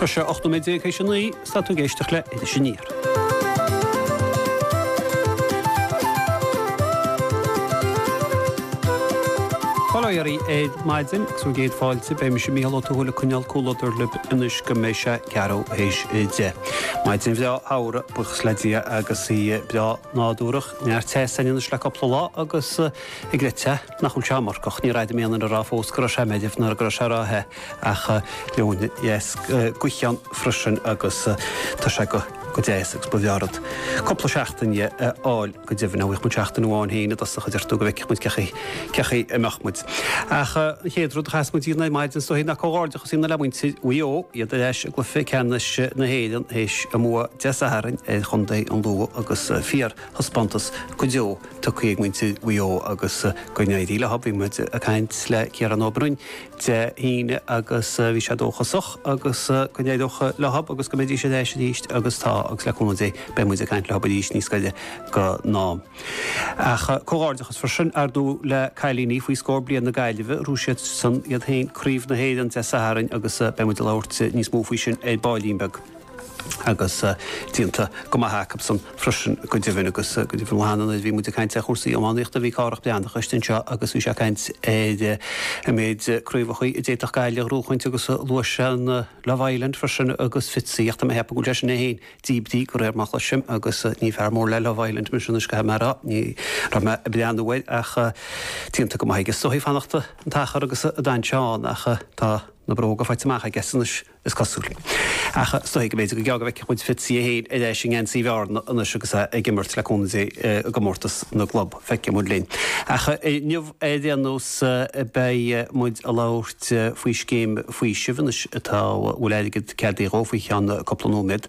Tá sé 18 nóiméad théis a naoi is tá tú ag éisteacht le hIris Aniar. Heileo dhaoibh ar maidin agus bhur gcéad fáilte, beidh mise, Mícheál Ó Tuathail, ag coinneáil cúlódair libh anois go mbeidh sé ceathrú théis deich. Maidin bhreá shamhraidh, buíochas le Dia, agus í breá nádúrach, neart teasa ann anois le cúpla lá agus ag rith te, nach bhfuil sé iomarcach. Ní raibh mé in ann a rá fós go raibh sé meirbh nó go raibh sé róthe ach leoithne dheas ghaoithe ann freisin agus tá sé go deas agus ba mhaith an rud cúpla seachtaine a fháil go deimhin dhá bhfaigheadh muid seachtain amháin féin i dtosach a deir tú go bhfeicfeadh muid cé chaoi a mbeadh muid. Ach an chéad rud a chaithfeas muid a dhéanamh ar maidin is dóichí ná comhghairdeachas a dhéanamh le muintir Mhaigh Eo, iad ar ais i gcluiche ceannais na hÉireann théis a mbua Dé Sathairn ar chontae an Lú agus fíorthaispeántas go deo tugtha ag muintir Mhaigh Eo agus go n-éirí leo. Bhí muid ag caint le Ciarán Ó Broin Dé hAoine agus bhí sé dóchasach agus go n-éireodh leo agus go mbeidís ar ais arís agus tá agus le cúnamh Dé beidh muid ag caint leo arís níos gaire go Ach comhghairdeachas freisin, ar ndóigh, le cailíní faoi scór bliain na Gaillimhe, ghnóthaigh siadsan iad féin craobh na hÉireann Dé Sathairn agus beidh muid ag labhairt níos mó faoi sin ar baillín beag agus déanta go maith acusan freisin go deimhin agus go deimhin an lá cheana nuair a bhí muid ag caint ar chúrsaí iománaíochta, bhí Cárthach Breathnach istigh anseo agus bhí sé ag caint ar an méid craobhacha a d'fhéadfadh Gaillimh a ghnóthachaint agus luaigh sé an Love Island freisin agus Fitzy ach tá mé ag ceapadh go bhfuil sé sin é féin díbrithe go réir mar a chloisim, agus ní fear mór le Love Island mise anois caithfidh mé a rá, ní raibh mé ag breathnú air ach déanta go maith aige. Is dóichí fanacht an t-achar agus a d'fhan sé ann ach tá na bróga faighte amach aige anois, is cosúil. Ach is dóichí go mb'fhéidir go gearr go bhfeicfidh muid Fitzy é féin ar ais i ngeansaí Bhearna anois agus é ag imirt le cúnamh Dé i gcomórtas na gclub. Feicfidh muid linn. Ach inniu ar aon nós beidh muid a labhairt faoi scéim faoisimh anois atá bhfuil airgead ceadaithe dhó faoi cheann cúpla nóiméad.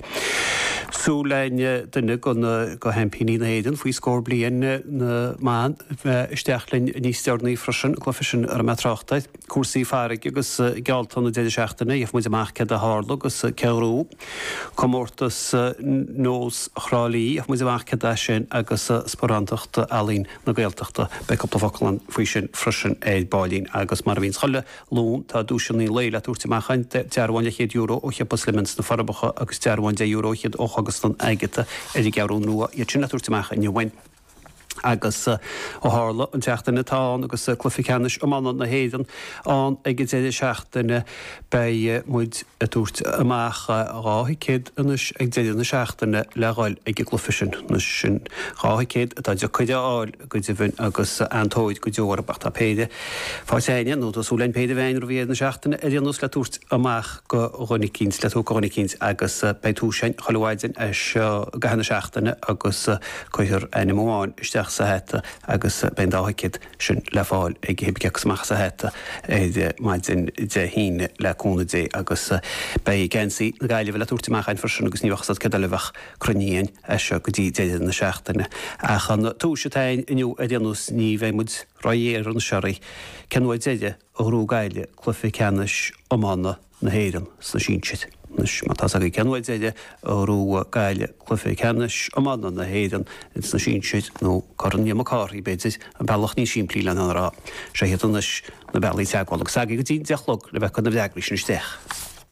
Súil againn duine go na go sheaimpíní na hÉireann faoi scór bliain na mban bheith isteach linn níos deireanaí freisin, cluife sin a raibh mé ag trácht air. cúrsaí farraige agus geallta na deireadh seachtaine, gheobhaidh muid amach céard a tharla agus cé a ghnóthaigh. Comórtas Sean-nóis Thrá Lí, gheobhaidh muid amach céard é sin agus sparánachtaí Ealaín na Gaeltachta. Beidh cúpla focal ann faoi sin freisin ar baillín agus mar a bhíonns chuile Luan tá duaiseanna an lae le tabhairt amach againn, dearbhán leathchéad euro ó Shiopa Slemon sna Forbacha agus dearbhán deich euro fhichead ó Chógaslann Agatha ar an gCeathrú Rua iad sin le tabhairt amach inniu againn. Agus ó tharla an tseachtain atá ann agus cluiche ceannais iomána na hÉireann ann ag an deireadh seachtaine, beidh muid ag tabhairt amach dhá thicéad anois ag deireadh na seachtaine le dhul ag an gcluiche sin. Sin dhá thicéad atá deacair a fháil go deimhin agus an-tóir go deo orthu. Ach tá péire faighte againn, nó tá súil againn péire a bheith againn roimh dheireadh na seachtaine ar aon nós le tabhairt amach go dhuine eicínt, le tabhairt go dhuine eicínt agus beidh tomhais againn chuile mhaidin as seo go deireadh na seachtaine agus Cuirfear ainm amháin isteach sa hata agus beidh an dá thicéad sin le fáil ag cibé cé thiocfas amach as an hata ar maidin Dé hAoine, le cúnamh Dé, agus beidh geansaí na Gaillimhe le tabhairt amach ann freisin agus ní bheadh fhios a't céard eile a bheadh cruinnithe againn as seo go dtí deireadh na seachtaine. Ach an tomhais atá ann inniu ar aon nós ní bheidh muid ró-ghéar anois oraibh, cén uair deireadh Ghnóthaigh Gaillimh Cluife Ceannais Iomána na hÉireann sna sinsir. Anois, má tá's agaibh cén uair deireadh a ghnóthaigh Gaillimh Cluife Ceannais Iomána na hÉireann sna sinsir, nó Corn Liam Mac Cárthaigh, b'fhéidir, an bealach níos simplí lena rá. Seo hiad anois na bealaí teagmhála agus agaibh go dtí an deich a chlog le bheith ag cur na bhfreagraí sin isteach.